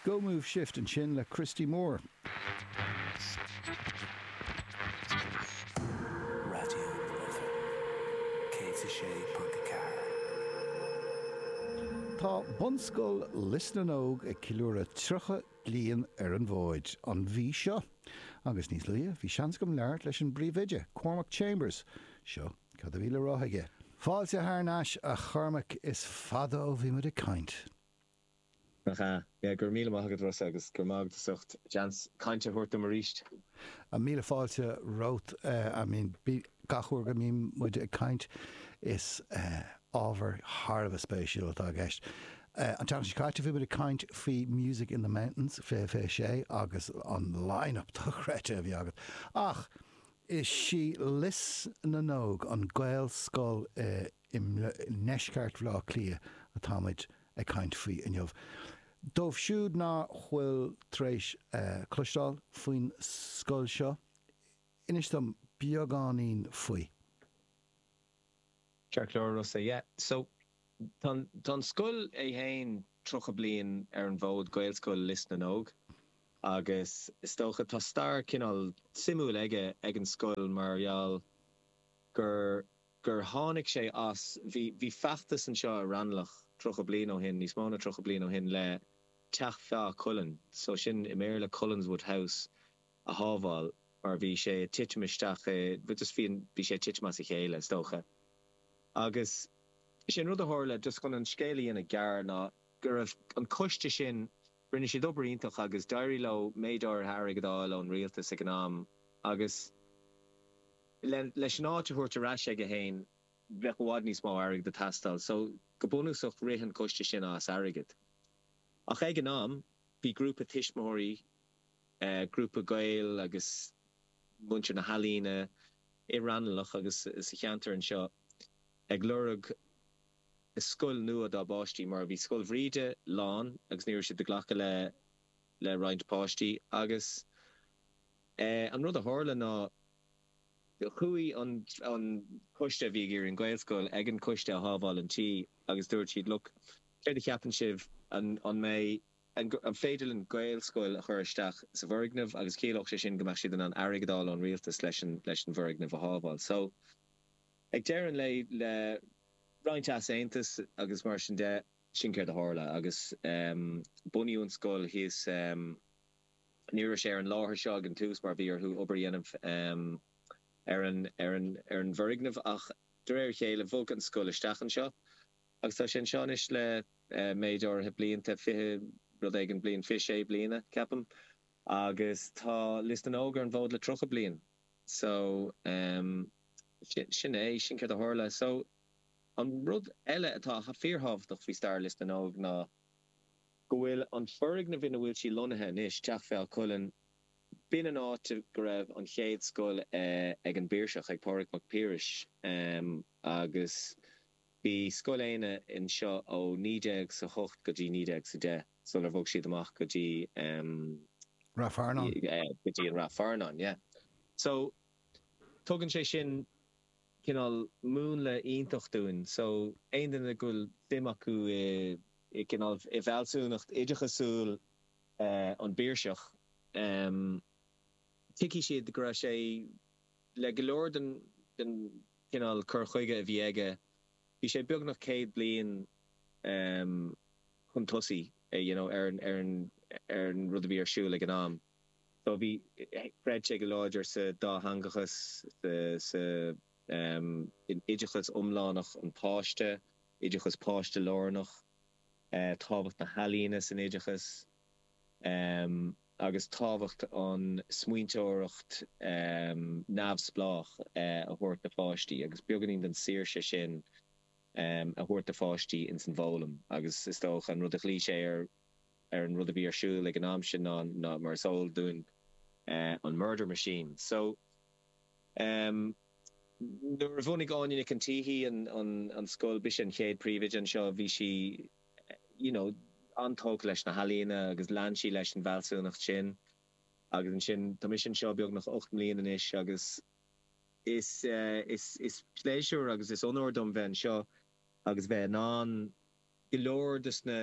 Go Move Shift ansin le Christy Moore. Tá Bunscoil Lios na nÓg ag ceiliúradh 30 bliain ar an bhfód an mhí seo, agus níos luaithe, bhí seans agam labhairt leis an bpríomhoide, Cormac Chambers. Seo Cad a bhí le rá aige? Fáilte thar n-ais a Chormaic, is fada ó bhí muid ag caint. Nach ea? Yeah, go raibh míle maith agat Rossa agus go raibh maith agat as ucht seans cainte a thabhairt dom arís. Ah, míle fáilte romhat. I mean, gach uair go mbíonn muid ag caint, is ábhar thar a bheith spéisiúil atá i gceist. An t-am seo caite bhí muid ag caint faoi Music in the Mountains, fiche, fiche, sé, agus an line-up dochreidte a bhí agat. Ach, Is í Lios na nÓg an Gaelscoil i ndeisceart Bhleá Cliath atá muid ag caint faoi inniu. Dóibh siúd ná fuil tar éis cloisteáil faoin scoil seo, inis dom beagáinín faoi. A Rossa, yeah. Tá, tá an scoil é fhéin 30 bliain ar an bhfód, Gaelscoil Lios na nÓg, agus is dócha tá stair cineál suimiúil aige ag an scoil mar gheall gur gur tháinig sé as, bhí bhí feachtas anseo i Raghnallach 30 bliain ó shin, níos mó na 30 bliain ó shin le Teach Feá Cuilinn, so sin i mBéarla Cullenswood House, a shábháil mar bhí sé ag titim isteach i, just bhí, bhí sé ag titim as a chéile is dócha. Agus sé an rud a tharla, just chun an scéal a dhéanamh gearr, ná go raibh an coiste sin, rinne siad obair iontach agus d'éirigh leo méid áirithe airgid a fháil ón rialtas ag an am agus le, leis an áit a thabhairt ar ais aige féin bheadh i bhfad níos mó airgid ag teastáil so go bunúsach rith an coiste sin as airgead ach ag an am bhí grúpa tuismitheoirí grúpa Gael agus muintir na healaíne i Raghnallach agus sa cheantar anseo ag lorg scoil nua dá bpáistí mar bhí Scoil Bhríde lán agus ní raibh siad ag glacadh le roinnt páistí agus an rud a tharla ná chuaigh an coiste a bhí ag iarraidh an Ghaelscoil ag an coiste a shábháil an tí agus dúirt siad look céard a cheapann sibh an mbeadh An féidir linn Gaelscoil a chur isteach sa bhfoirgneamh agus ciallódh sé sin go mbeadh siad in ann airgead a fháil ón rialtas leis an bhfoirgneamh a shábháil. So ag deireadh an lae le roinnt easaontas agus mar sin de, sin céard a tharla agus bunaíodh an scoil thíos. Ní raibh sé ar an láthair seo ag an tús mar bhí orthu obair a dhéanamh ar an bhfoirgneamh ach de réir a chéile bhog an scoil isteach anseo Agus tá sé anseo anois le méid áirithe blianta, fiche rud éigin bliain, fiche sé bliana, ceapaim. Agus tá Lios na nÓg ar an bhfód le tríocha bliain. So, em, sin, sin é, sin céard a tharla. So, an rud eile atá fíorthábhachtach faoi stair Lios na nÓg ná go bhfuil an foirgneamh ina bhfuil sí lonnaithe anois, Teach Feadha Cuilinn, b'in an áit a go raibh an chéad scoil eh ag an bPiarsach, ag Pádraig Mac Piarais, em, agus. Bhí Scoil Éanna anseo ó naoi déag sa hocht go dtí naoi déag sa deich sular bhog siad amach go dtí ehm. Ráth Fearnáin. Yeah, go dtí Ráth Fearnáin, yeah. So, tugann sé sin cineál múnla iontach dúinn. So, aon duine go bhfuil suim acu i, i gcineál, i bhfealsúnacht oideachasúil eh an bPiarsach, ehm, tuigfidh siad go raibh sé, le go leor den chineál cur chuige a bhí aige, bhí sé beagnach céad bliain chun tosaigh you know ar an rud a bhí ar siúl ag an am. So bhí, chreid sé go láidir sa dátheangachas, sa oideachas iomlánach an pháiste, oideachas páiste-lárnach, tábhacht na healaíona san oideachas. agus tábhacht an smaointeoireacht neamhspleách a thabhairt do pháistí agus beagáinín den saoirse sin a thabhairt do pháistí ins an bhfoghlaim agus is dócha an rud a ghlaoigh sé ar ar an rud a bhí ar siúl ag an am sin ná ná mar is eol dúinn an Murder Machine so nuair a bhunaigh Áine Nic an tSíthigh an an an scoil b'ise an chéad príomhoide anseo bhí sí you know, an-tógtha leis na healaíona agus lean sí leis an bhfealsúnacht sin agus ansin, tá mise anseo beagnach ocht mbliain anois agus is, is, is pléisiúr agus is onóir dom bheith anseo agus bheith in ann go leor dos na,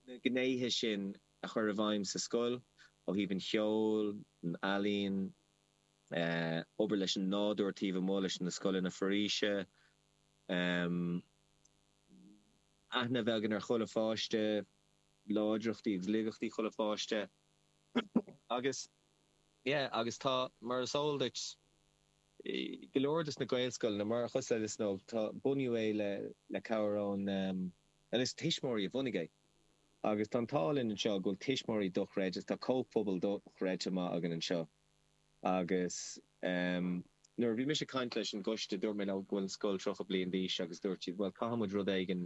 na gnéithe sin a chur i bhfeidhm sa scoil ó thaobh an cheoil, an ealaíon, eh, obair leis an nádúr taobh amuigh leis na scoileanna foraoise, em. aithne a bheith againn ar chuile pháiste, láidreachtaí agus laigeachtaí chuile pháiste agus yeah agus tá, mar is eol duit, go leor dos na Gaelscoileanna, mar, cosúil le Lios na nÓg, tá, bunaíodh é le, le cabhair ón, bhuel is tuismitheoirí a bhunaigh é agus tá an t-ádh linn anseo go bhfuil tuismitheoirí dochreidte, tá comhphobal dochreidte amach againn anseo. agus nuair a bhí mise ag caint leis an gcoiste dúirt mé leo go bhfuil an scoil 30 bliain d'aois agus dúirt siad bhuel caithfidh muid rud éigin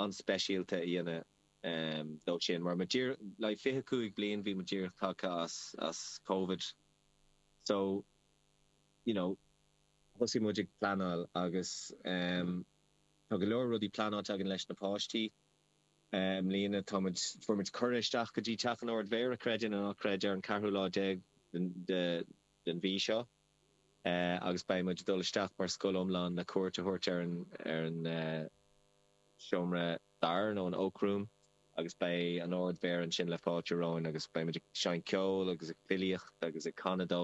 an-speisialta a dhéanamh dó sin mar muid díreach, like 25 bliain, bhí muid díreach tagtha as, as Covid so you know thosaigh muid ag pleanáil agus tá go leor rudaí pleanáilte againn leis na páistí I mbliana tá muid, fuair muid cuireadh isteach go dtí Teach an Árd Mhéara, creid é nó ná creid, ar an ceathrú lá déag den mhí seo agus beidh muid ag dul isteach mar scoil iomlán le cuairt a thabhairt ar an Seomra Darach nó an Oak Room agus beidh an Árd Mhéara ansin le fáilte romhainn agus beidh muid ag seinnt ceol agus ag filíocht agus ag canadh dó.